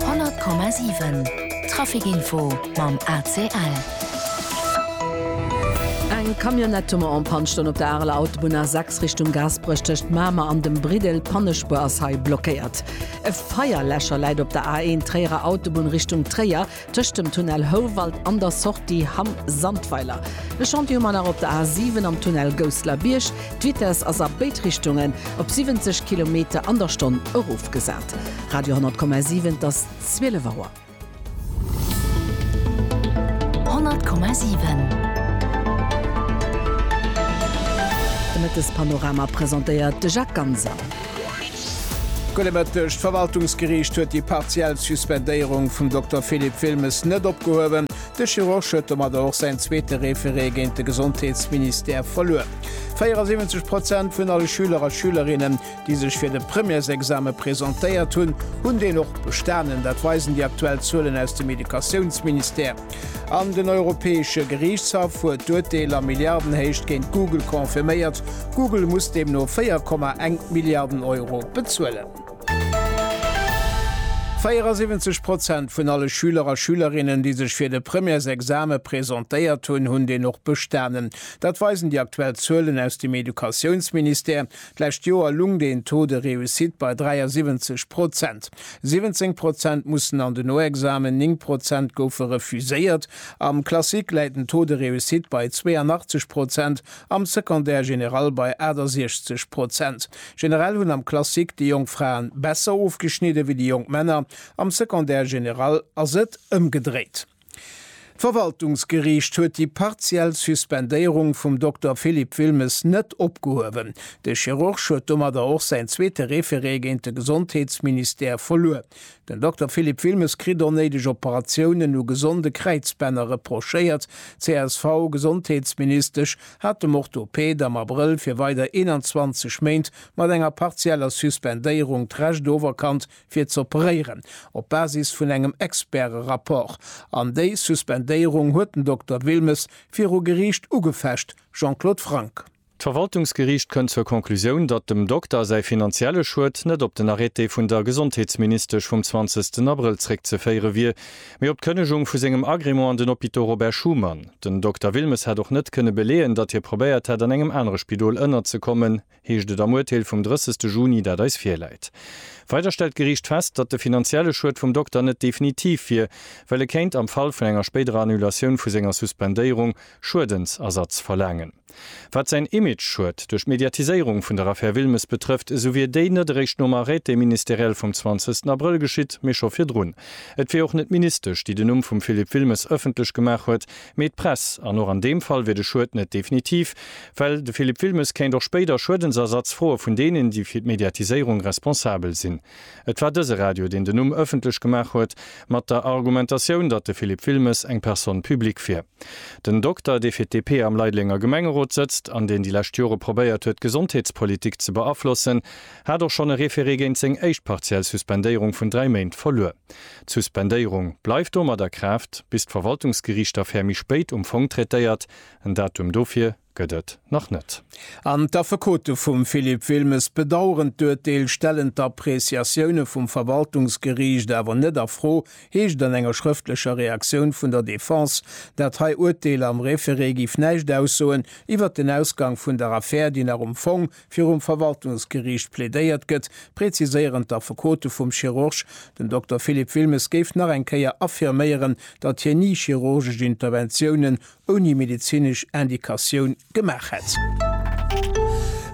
100,7 Traficinfo mam ACL. Eng Camionnette mat en Panne stoung op der Areler Autobunn A6 Richtung Gaasperech tëscht Mamer an dem Briddel. D'Pannespuer ass hei blockéiert. E Feierläscher läit op der A1 Tréierer Autobunn Richtung Tréier. Tëscht dem Tunnel Houwald an der Sortie Hamm Sandweiler. E Chantier hu mer nach op der A 7 am Tunnel Gousseler Bierg. D'Vitesse ass a béid Richtungen op 70 Kilometer an der Stonn erofgesat. Radio 10,7 't ass 12 Auer. 10,7 De Mëttespanorama presentéiert de Jacques Ganser. Gudde Mëtteg. D'Verwaltungsgeriicht huet déi partiell Suspendéierung vum Dokter Philippe Wilmes net opgehuewen. De Chirurg huet domadder och säin zweete Référé géint de Gesondheetsministère verluer. 74 Prozent vun alle Schüler a Schülerinnen, déi sech fir de Premièresexame presentéiert hunn, hunn deen och bestanen. Dat weisen déi aktuell Zuelen aus dem Educatiounsministère. An den Europäesche Geriichtshaff huet d'Urteel a Milliardenhéicht géint Google confirméiert. Google muss deemno 4,1 Milliarden Euro bezuelen. 74 Prozent vun alle Schüler a Schülerinnen, déi sech fir de Premièresexame presentéiert hunn, hunn deen och bestanen. Dat weisen déi aktuell Zuelen aus dem Educatiounsministère. D'lescht Joer lungt een Taux de réussite bei 73 Prozent. 17 Prozent mussen an den Noexamen, 9 Prozent goufe refuséiert. Am Classique läit den Taux de réussite bei 82 Prozent, am Secondaire général bei 68 Prozent. Generell hunn am Classique déi jonk Fraen besser ofgeschnidde wéi déi jonk Männer, am Secondaire général ass et ëmgedréit. D'Verwaltungsgeriicht huet déi partiell Suspendéierung vum Dokter Philippe Wilmes net opgehuewen. De Chirurg huet domadder och säin zweete Référé géint de Gesondheetsministère verluer. Den Dokter Philippe Wilmes kritt onnéideg Operatiounen u gesonde Kräizbänner reprochéiert. D'CSV-Gesondheetsministesch hat dem Orthoped am Abrëll fir weider 21 Méint mat enger partieller Suspendéierung d'Recht oferkannt, fir z'operéieren, op Basis vun engem Experte-Rapport. An déi Suspendéierung huet den Dokter Wilmes viru Geriicht ugefecht, Jean-Claude Franck. D'Verwaltungsgeriicht kënnt zur Conclusioun, datt dem Dokter säi finanzielle Schued net op den Arrêté vun der Gesondheetsministesch vum 20 Abrëll zréckzeféiere wier, mee op d'Kënnegung vu sengem Agrément an den Hôpitaux Robert Schuman. Den Dokter Wilmes hätt och net kënne beleeën, datt hie probéiert hätt, an engem anere Spidol ënnerzekommen. heescht et am Urteel vum 30 Juni, dat eis virläit. Weider stellt d'Geriicht fest, datt de finanzielle Schued vum Dokter net definitiv wier, well e kéint am Fall vun enger spéiderer Annulatioun vu senger Suspendéierung Schuedensersatz verlaangen. Wat säin Image-Schued duerch d'Mediatiséierung vun der Affär Wilmes betrëfft, esou wier déi net eréischt nom Arrêté ministériel vum 20 Abrëll geschitt, mee scho virdrun. Et wier och net d'Ministesch, déi den Numm vum Philippe Wilmes ëffentlech gemaach huet, Mee d'Press, an och an deem Fall, wier de Schued net definitiv, well de Philippe Wilmes kéint och spéider Schuedensersatz froe vun deenen, déi fir d'Mediatiséierung responsabel sinn. Et war dëse Radio, deen den Numm ëffentlech gemaach huet, mat der Argumentatioun, datt de Philippe Wilmes eng Personne publique wier. Den Dokter, dee fir d'DP am Leidelenger Gemengerot sëtzt an deen déi lescht Jore probéiert huet, d'Gesondheetspolitik ze beaflossen, hat och schonn e Référé géint seng éischt partiell Suspendéierung vun dräi Méint verluer. D'Suspendéierung bleift domat a Kraaft, bis d'Verwaltungsgeriicht d'Affär méi spéit um Fong traitéiert. En Datum dofir gëtt et nach net. An d'Affekote vum Philippe Wilmes bedaueren d'Urteel, stellen d'Appreciatioune vum Verwaltungsgeriicht awer net a Fro, heescht an enger schrëftlecher Reaktioun vun der Defense. Dat hei Urteel am Référé giff näischt aussoen iwwert den Ausgang vun der Affär, déi nach um Fong virum Verwaltungsgeriicht plädéiert gëtt, präziséieren d'Affekote vum Chirurg. Den Dokter Philippe Wilmes géif nach eng Kéier affirméieren, datt hien ni chirurgesch Interventiounen ouni medezinesch Indikatioun gemaach hätt.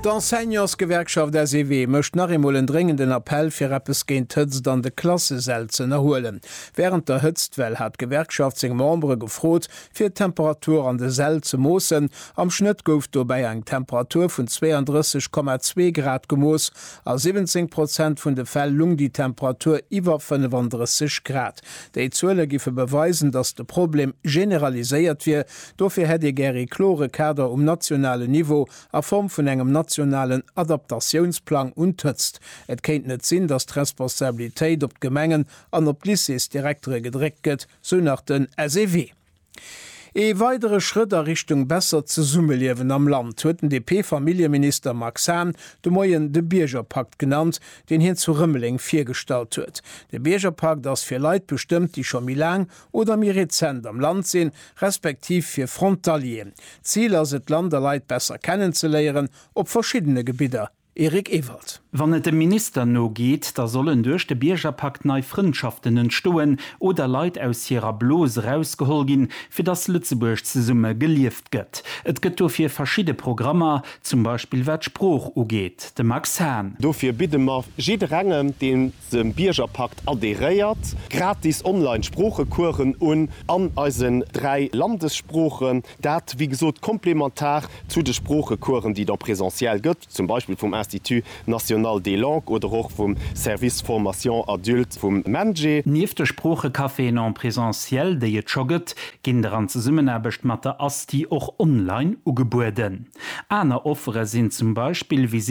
D'Enseignantsgewerkschaft SEW mécht nach eemol en dréngenden Appell, fir eppes géint d'Hëtzt an de Klassesäll z'ënnerhuelen. Wärend der Hëtztwell hat d'Gewerkschaft seng Membere gefrot, Fir d'Temperatur an de Säll ze moossen, am Schnëtt gouf dobäi eng Temperatur vun 32,2 Grad gemooss. A 17 Prozent vun de Fäll lung déi Temperatur iwwer 35 Grad. Déi Zuele giffe beweisen, datt de Problem generaliséiert wier. Dofir hätt ee gär ee klore Kader um nationalen Niveau a Form vun engem nationalen Adaptatiounsplang un d'Hëtzt. Et kéint net sinn, datt d'Responsabilitéit op d'Gemengen an op d'Lycéesdirektere gedréckt gëtt. sou nach den SEW. Ee weidere Schrëtt a Richtung bessert Zesummeliewen am Land huet den DP-Familljeminister Max Hahn de Moien de Biergerpakt genannt, deen hien zu Rëmeleng virgestallt huet. De Biergerpakt ass fir Leit bestëmmt, déi scho méi laang oder méi rezent am Land sinn, respektiv fir Frontalieren. D'Zil ass et, d'Land a Leit besser kennenzeléieren op verschiddene Gebidder. Eric Ewald. Wann et dem Minister no geet, da sollen duerch de Biergerpakt nei Frëndschaften entstoen oder Leit aus hirer Blos erausgeholl ginn, fir datt Lëtzebuerg zesumme gelieft gëtt. Et gëtt dofir verschidde Programmer, zum Beispill wat d'Sprooch ugeet. De Max Hahn. Dofir bidde mer jidderengem, dee dem Biergerpakt adheréiert, gratis online Sproochecoursen un an eisen dräi Landessproochen, dat wéi gesot komplementar zu de Sproochecoursen, déi et en présentiel gëtt, zum Beispill vum Institut national des langues oder och vum Service formation adulte vum MENJE. Nieft de Sproochecaféen en présentiel, déi et scho gëtt, ginn der an Zesummenaarbecht mat der ASTI och online ugebueden. Aner Offere sinn zum Beispill Visiten